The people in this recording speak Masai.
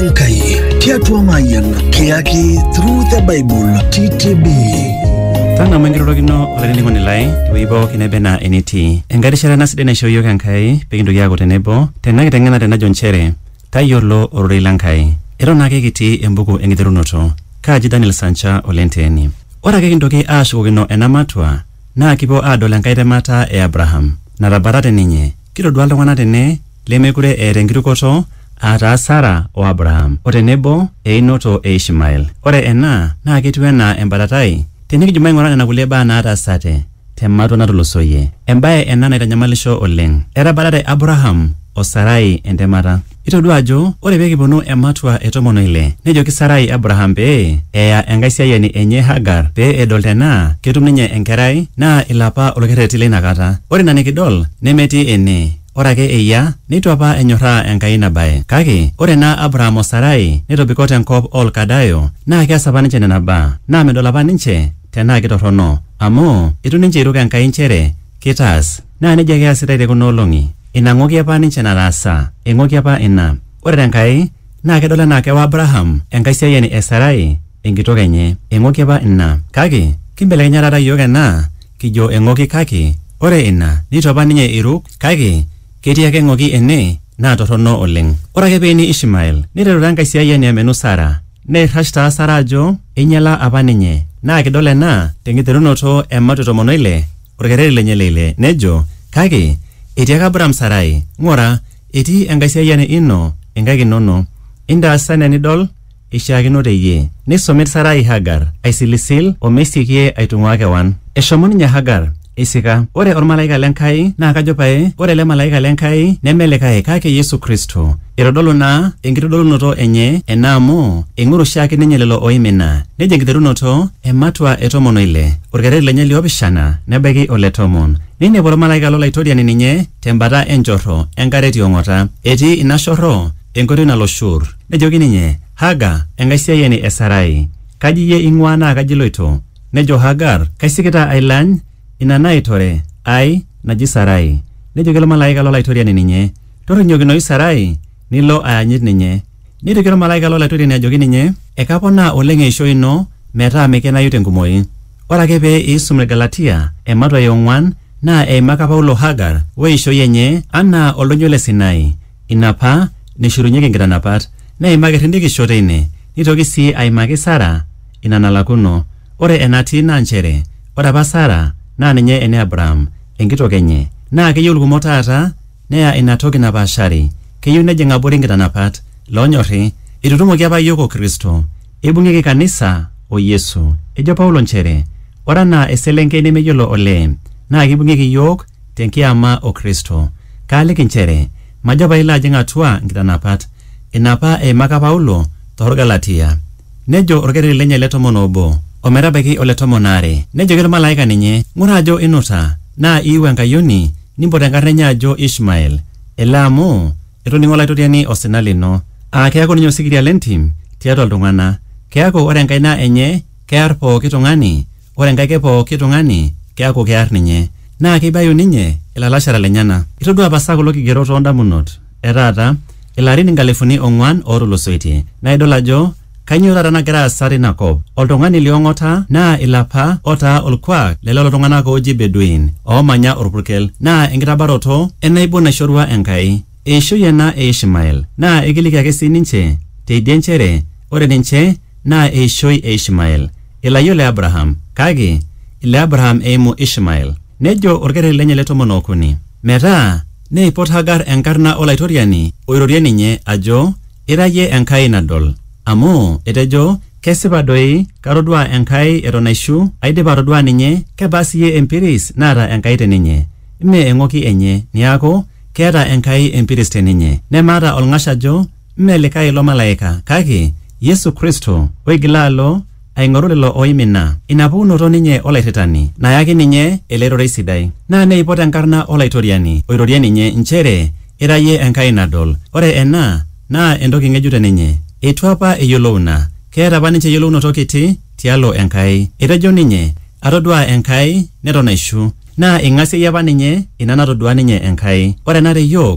Nkai tiatua Mayan kiyaki Through the Bible TTB. tang'amu enkirorokino olainining'oni lai tewueji pooki nebe naa enitii enkai rishata ena sidai naishoo iyiook enkai pekintoki aaku tenebo tena kiteng'enare najo nchere tayiolo ororei le nkai eton ake kitii embuku enkiterunoto kaaji daniel sancha olenteeni ore ake kintoki aashukokino ena matua naa kipuo aadol enkai temata e abraham natabata te ninye kitodua iltung'anak tene lemekure eeta enkirukoto, aa taa Sara o Abraham, o tenebo einoto e Ishmael. Ore ena naa ketiu enaa embatatai tinikijo maing'ura nena kulie baa naataasate te matua natulusoyie. Embae ena naitanyamalisho oleng. Etabatate Abraham o Sarai entemata. Itodua ajo ore pee kiponu ematua e tomon o ile, nejoki Sarai Abraham pee eya enkaisiayiani enye Hagar pee edol tenaa ketum ninye enkerai naa ilo apa olkerreti leina kata. Ore ina nikidol nemetii ene. Ore ake eyia, neitu apa enyorraa Enkai ina bae. Kake ore naa Abraham o Sarai netobiko te nkop oo Lkadayo naa keas apa ninche nena baa naa medol apa ninche tenaa kitorrono amu eitu ninche eiruk Enkai nchere keitaas. Naa neijia ake easitai te kuna olong'i. Ina ng'oki apa ninche nataasa, eng'oki apa ina. Ore te Nkai, Naa kedol anaa kewa Abraham enkaisiayiani e Sarai enkitok enye. Eng'oki apa ina. Kake kimbelekenya taata iyiook ena kijo eng'oki kake ore ina neitu apa ninye eiruk kake ketii ake eng'oki ene naa torrono oleng. Ore ake pee eini Ishmael neiteru taa enkaisiayiani amenu Sara. Neirrash taa Sara ajo einyala apa ninye. Naa kidol ena tenkiterunoto e Mateo tomon oile, olkereri lenye le ile nejo, Kake etiaka Abraham Sarai, Ng'ura, Etii enkaisiayiani ino inkaik inono, intaasa enaa enidol eishiakino te iyie. Neisomit Sarai Hagar aisilisil o meisiekie aitung'uaa kewan. Eshomo ninye Hagar eisika. Ore olmalaika le Nkai naa kajo pae ore ele malaika le Nkai neme likae kake Yesu Kristo. Eitodolu naa enkitodolunoto enye ena amu eing'oru oshiake ninye lelo ooimina. Nejo enkiterunoto e matua e tomon o ile, olkereri lenye li opishana nebaiki ole tomon. Neinepu olmalaika lo Laitoriani ninye. tembata enchorro enkare ti ong'ota. Etii ina shorro enkoitoi nalo Shur. Nejoki ninye, Haga, enkaisiayiani e Sarai, kaji iyie eing'uaa naa kaji iloito? Nejo Hagar, Kaisikita ailany ina naitore ai naji Sarai. Nejoki olmalaika lo Laitoriani ninye, Torrinyokinoyu Sarai nilo ayanyit ninye. Neitoki olmalaika lo Laitoriani ajoki ninye, Ekaponaa oleng eishoi ino metaa meikenayu tenkumoi. Ore ake pee iisum Ilgalatia ematua e ong'uan naa eimaka Paulo Hagar o eishoi enye anaa Oldonyo le Sinai, ina apa neishorunyeki inkitanapat. Neimaki irrindikisho teine. Neitoki sii aimaki Sara ina nalakuno. Ore enatii naa nchere ore apa Sara naa ninye ene Abraham, enkitok enye. Naa keyieu ilkumok taata Neya ina toki napaashari, keyieu nejing abori nkitanapat. Loonyorri, eitutumoki apa iyiook o Kristo. Eibung'ieki kanisa o Yesu. Ejo Paulo nchere ore anaa eselenkei nemeyiolo olee naa keibung'ieki iyiook te nkiyama o Kristo. Kaaliki nchere majo pailo ajing atua nkitanapat. Ina apa eimaka Paulo too Lgalatia. Nejo olkereri lenye le tomon o obo o metabaiki ole tomon aare. Nejoki olmalaika ninye, Ng'ura ajo inuta, naa iiu enkayioni, nimpot enkarna enye ajo Ishmael, ele amu etoning'o Olaitoriani osina lino, aa keaku ninye osikiria le ntim tiatua iltung'ana, keaku ore enkaina enye kear pooki tung'ani Ore enkae ke pooki tung'ani keaku kear ninye, naa keibayu ninye ilalashera lenyena. Itodua pasa kulo kigerot oo ndamunot e taata ilarin inkalifuni ong'uan ootulusoitie, naa idol ajo kainyoo taata nagira aasa teina kop. Oltung'ani li ong'ota naa ilo apa otaa olkuak le lelo tung'ana ooji Bedouin oomanya olpurkel. Naa enkitabaroto e naibon naishorua Enkai. Eishoi ena e Ishmael. Naa eikiliki ake sii ninche teidie nchere ore ninche Naa eishoi e Ishmael, ilayiok le Abraham, kake ile Abraham eimu Ishmael. Nejo olkereri lenye le tomon o okuni, Metaa neipot Hagar enkarna o Laitoriani oirorie ninye, ajo, Ira iyie Enkai nadol. Amu etejo, Kesipa doi, katoduaa Enkai eton aishu, aidipa atoduaa ninye, kebaa siyie empiris naata Enkai te ninye? Mme eng'oki enye, neaku, keeta Enkai empiris te ninye. Nemaata olng'ash ajo, Mme likae ilo malaika kake Yesu Kristo oigila alo aing'oru lelo ooimina. Ina pukunoto ninye olairritani nayaki ninye ele rorei sidai. Naa neipot enkarna Olaitoriani oirorie ninye nchere ira iyie Enkai nadol. Ore ena naa entoki ng'ejuk te ninye. Eitu apa eyiolou ina. Keeta apa ninche eyiolounoto kiti tialo Enkai. Etejo ninye, Atoduaa Enkai neton aishu. Naa eing'asieyie apa ninye ina natodua ninye Enkai. Ore ena te iyiook